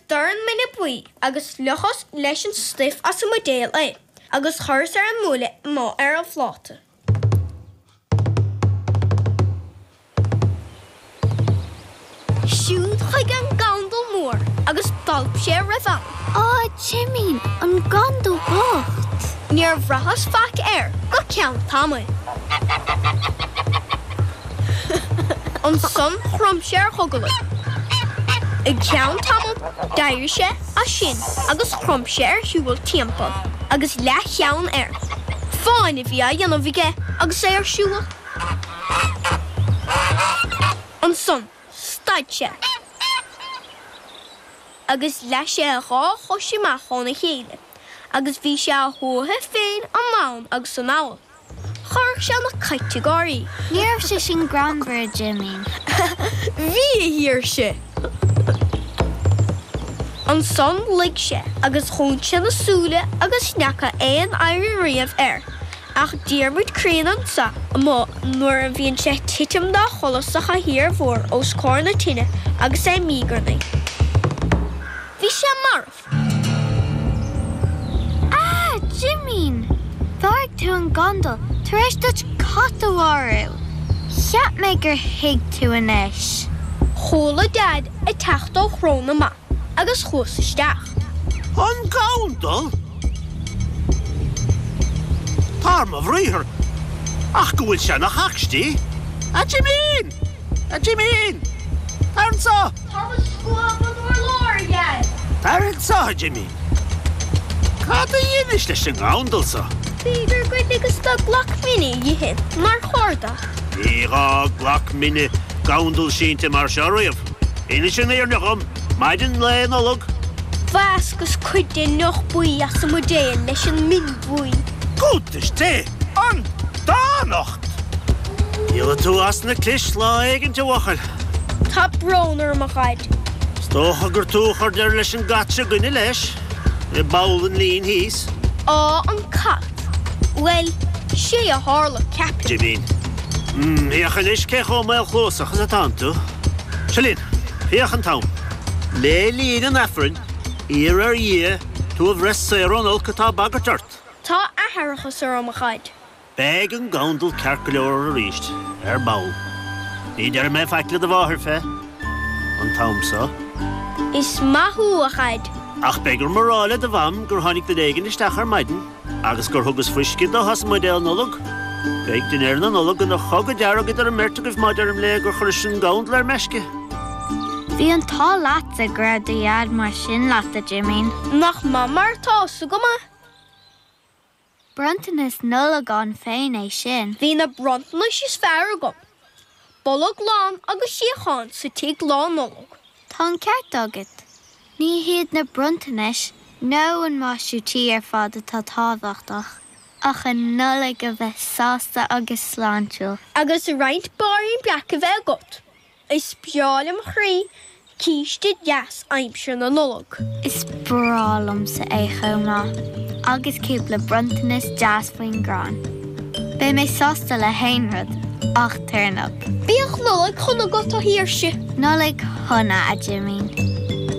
dorn mine buí agus fliuchas leis an stuif as an mbuidéal é agus chuireas ar an mbuaile nó ar an phláta. Siúd chuige an gandal mór agus d'alp sé a raibh ann. Á, a Jimín, an gandal bocht! Níor bhraitheas faic air go ceann tamaill. Ansan chrom sé ar ghogalaigh. I gceann tamaill d'éirigh sé as sin agus chrom sé ar shiubhal timpal agus leathcheann air. Fáinne a bhí á dhéanamh aige agus é ar siubhal. Ansan stad sé agus leath sé a dhá chois amach ó'n a chéile agus bhí sé á shuathadh féin anonn agus anall. Chuirfeadh sé na cait ag gáirí. Ní raibh sé sin greannmhar, a Jimín. Bhí, a Shaoirse. Ansan luigh sé agus dhún sé na súile agus n'fheaca aon oidhre riamh air ach Diarmuid Críonna anso amuigh nuair a bhíonn sé ag titim dá chodladh sa chathaoir mhór os comhair na tine agus é ag míogarnaí. Bhí sé marbh. Ah! Jimín! Mharaigh tú an gandal tar éis duit cat a mharú! Cheap mé gur thuig tú anois. Chuala Deaid ag teacht ó chró na mba agus chuas isteach. An gandal? Dar mo bhriathar ach go bhfuil sé ina chocstí, a Jimín! A Jimín! Tar anso! Táim ag scuabadh an urláir, a Dheaid! Tar anso, a Jimín! Cad a dheinis leis an ngandal so? B'fhéidir gur ligeas dó glac mine a dh'ithe mar chuardach. Níor fhág glac mine gandal sínte mar seo riamh. Innis an fhírinne dhom, maidin Lae Nollag. Mheascas cuid de'n ndeoch buí as an mbuidéal leis an min bhuí. Cuntas Dé! An dánacht! Díolfaidh tú as na clis lá éigint, a bhuachaill. Tá brón orm, a Dhaid. Is dócha gur tú a chuir deireadh leis an gcat seo 'gainne leis, i bPoll an Lín thíos. Á, an cat. Bhuel, 'sé a tharla, ceapaim. Jimín. M, Féach anois cé chomh maolchluasach is atánn tú. Seo linn. Féach an t-am. Le linn an Aifrinn, iarr ar Dhia tú a bhreith saor ón olc atá ag bagairt ort. Tá aithreachas orm, a Dhaid. Beidh an gandal ceart go leor aríst, ar ball. Ní déarfaidh mé faic le do mháthair fé an t-am so. Is maith thú, a Dhaid. Ach beidh orm a rá le do Mham gur tháinig duine éigin isteach ar maidin agus gur thugas fuisce dó a bhí sa mbuidéal Nollag. Beidh dinnéar na Nollag ina chogadh dearg idir an mbeirt agaibh má deirim léi gur chuiris-se an gandal ar meisce. Bhí an t-ádh leatsa go raibh do Dhaid mar sin leat, a Jimín. Nach maith mar atá a fhios agam é? Bronntanas Nollag ann féin é sin. Bhí na bronntanais is fearr agam, bolg lán agus suíochán sa tigh Lá Nollag. Tá an ceart agat. Ní hiad na bronntanais nó an maisiú tí ar fad atá tábhachtach, ach an Nollaig a bheith sásta agus sláintiúil. Agus roinnt báirín breac a bheith agat. Is breá lem chroí císte deas aimsir na Nollag. Is breá liomsa é chomh maith agus cúpla bronntanas deas faoin gcrann. Beidh mé sásta le haon rud ach turnap. Bíodh Nollaig shona agat, a Shaoirse. Nollaig shona, a Jimín.